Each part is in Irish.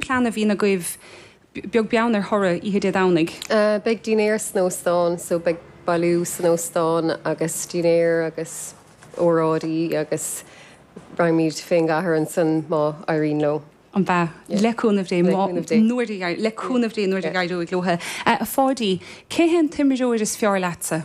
plean a bhíonn agaibh, beag beann ar thoradh oíche Dé Domhnaigh? Beidh dinnéar san óstán so beidh bailiú san óstán agus dinnéar agus óráidí agus raghaimid féin go cathair ansan má éiríonn leo. an ea? Le cúnamh Dé, má, nuair a, le cúnamh Dé nuair a éireoidh leo. A Pháidí, cé hé an t-imreoir is fearr leatsa?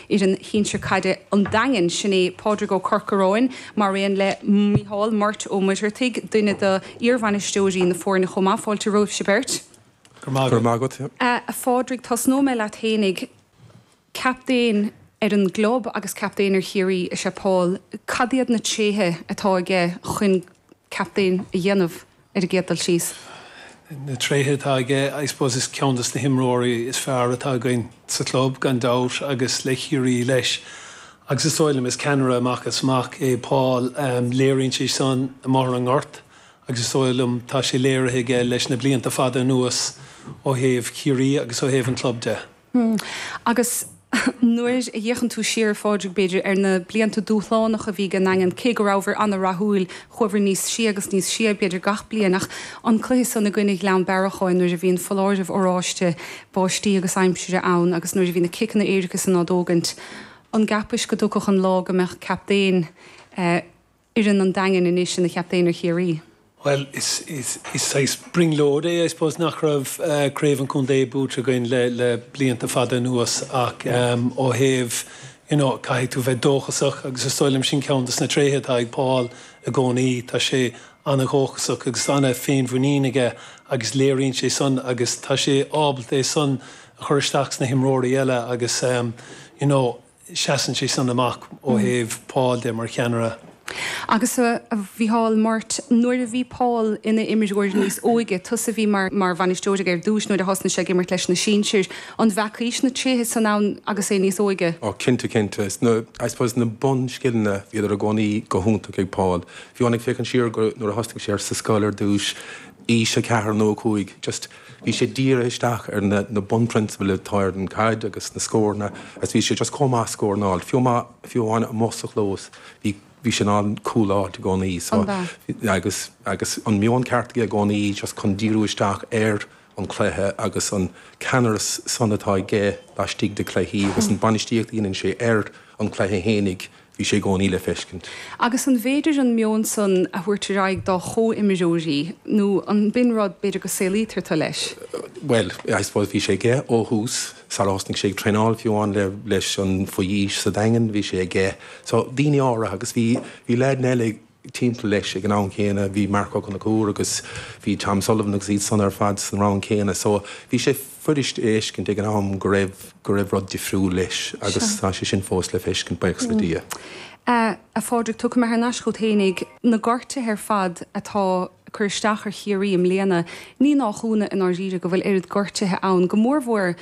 fhoireann shinsir caide an Daingin, sin é Pádraig Ó Corcaráin, maraon le Micheál Murt Ó Muircheartaigh, duine do iarbhainisteoirí na foirne chomh maith. Fáilte romhaibhse beirt. Go raibh maith agat. A Phádraig, tosnóidh mé leat fhéinig. Captaen ar an gclub agus captaen ar Chiarraí is ea Paul. Cad iad na tréithe atá aige chuin captaen a dhéanamh? ar an gcéad dul síos. Na tréithe atá aige, I suppose is ceann dos na himreoirí is fearr atá againn sa chlub gan dabht agus le Ciarraí leis agus is dóigh liom is ceannaire amach is amach é Paul. Léiríonn sé san i mBóthar na nGort agus is dóigh liom tá sé léirithe aige leis na blianta fada anuas ó thaobh Ciarraí agus ó thaobh an chlub de. Hm. Agus nuair a fhéachann tú siar, a Phádraig, b'fhéidir, ar na blianta dúshlánach a bhí ag an nDaingean, cé go rabhabhair an-rathúil, chuaibhair níos sia agus níos sia, b'fhéidir, gach bliain, ach an cluiche san i gcoinne Ghleann Bearacháin nuair a bhí an foláireamh oráiste báistí agus aimsire ann agus nuair a bhí na ciceanna éirice san á dtógaint, an gceapais go dtiocfadh an lá go mbeadh captaen. fhoireann an Daingin anois ina chaptaen ar Chiarraí. Bhuel, is saghas brionglóid é, I suppose, nach raibh craobh an chontae buaite againn le blianta fada anuas ach ó thaobh, you know, caithfidh tú bheith dóchasach agus is dóigh liom sin ceann de na tréithe atá ag Paul i gcónaí. Tá sé ana-dhóchasach agus ana-fhéinmhuinín aige agus léiríonn sé san agus tá sé ábalta é san a chur isteach sna himreoirí eile agus, you know, seasann sé san amach ó thaobh Paul de mar cheannaire. Agus a Mhichíl Murt, nuair a bhí Paul ina imreoir níos óige, tusa a bhí mar bhainisteoir aige ar dtúis nuair a thosnaigh sé ag imirt leis na sinsir, an bhfeacais na tréithe san ann agus é níos óige? Ó cinnte, cinnte. Is na, I suppose, na bunscileanna, bhíodar i gcónaí go hiontach ag Paul. Bhí ann, ag féachaint siar go, nuair a thosnaigh sé ar sa scoil ar dtúis, aois a ceathair nó a cúig, just, Bhí sé dírithe isteach ar na bunphrionsabail atá ar an chaid agus na scóranna agus bhí sé just chomh maith scóranáil. Fiú amháin amuigh sa chlós bhí sé in ann cúl a fháilt i gcónaí. So agus an meon ceart aige i gcónaí just chun díriú isteach ar an chluiche agus an ceannaireas san atá aige laistigh de chluichí agus an bainistíocht a dhéanann sé ar an chluiche fhéinig, Bhí sé i gcónaí le feiscint. Agus an bhféidir an meon san a thabhairt ar aghaidh dá chomhimreoirí nó an b'in rud, b'fhéidir, go saolaítear tú leis? Bhuel, I suppose bhí sé aige ó thús. Sara thosnaigh sé ag traenáil fiú amháin leis an, faoi aois, sa Daingean, bhí sé aige. So, daoine á rá, agus bhí, bhí leaideanna eile ag. timpeall leis ag an am chéanna bhí Marc Ó Conchúir agus bhí Tom Sullivan agus iad san ar fad san rang céanna so bhí sé fuirist a fheiscint ag an am go raibh go raibh rud difriúil leis agus tá sé sin fós le feiscint buíochas le Dia. A Phádraig, tiocfam thar n-ais chút fhéinig. Na gortuithe ar fad atá. cur isteach ar Chiarraí i mbliana. Ní haon chúnamh i ndáiríre go bhfuil oiread gortuithe ann, go mórmhór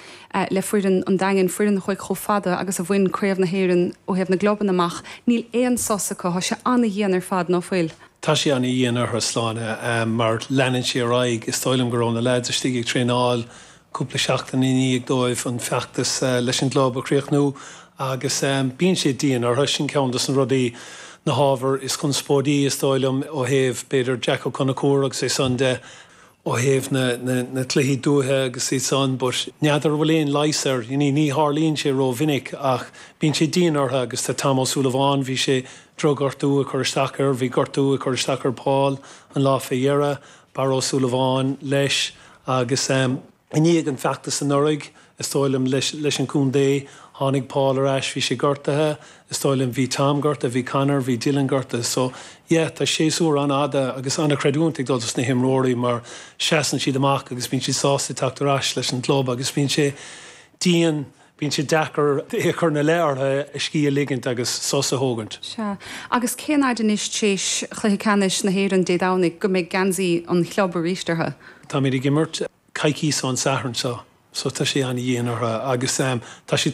le foireann an Daingin, foireann a chuaigh chomh fada agus a bhain, Craobh na hÉireann ó thaobh na gclub a amach. Níl aon sos acu, tá sé an-dhian ar fad, ná fuil? Tá sé an-dhian orthu, sláine, mar leanann sé ar aghaidh. Is dóigh liom go raibh na leaids istigh ag traenáil cúpla seachtain i ndiaidh dóibh an feachtas leis an gclub a chríochnú agus bíonn sé dian orthu. Sin ceann dos na rudaí, na hábhair is conspóidí is dóigh liom ó thaobh, b'fhéidir, Jack Ó Conchúir agus é sin de, ó thaobh na gcluichí dúiche agus iad san but n'fheadar an bhfuil aon leigheas air, ní tharlaíonn sé ró-mhinic ach bíonn sé dian orthu agus tá Tom Ó Súilleabháin, bhí sé, drochghortú ag cur isteach air, bhí gortú ag cur isteach ar Paul an lá fé dheireadh, Barra Ó Súilleabháin leis Agus i ndiaidh an fheachtais anuraidh, is dóigh liom, leis an contae, tháinig Paul ar ais, bhí sé gortaithe, is dóigh liom, bhí Tom gortaithe, bhí Conor, bhí Dylan gortaithe. So, yeah, tá séasúr an-fhada agus an-chreidiúint ag dul dos na himreoirí mar seasann siad amach agus bíonn siad sásta teacht ar ais leis an gclub agus bíonn sé dian Bíonn sé deacair é a chur ina leith ortha a scíth a ligint agus sos a thógaint. Sea. Agus cén fhaid anois t'réis chluiche ceannais na hÉireann Dé Domhnaigh go mbeidh geansaí an chlub arís ortha? Táimíd ag imirt coicíos ón Satharn seo so tá sé an-dhian ortha agus tá siad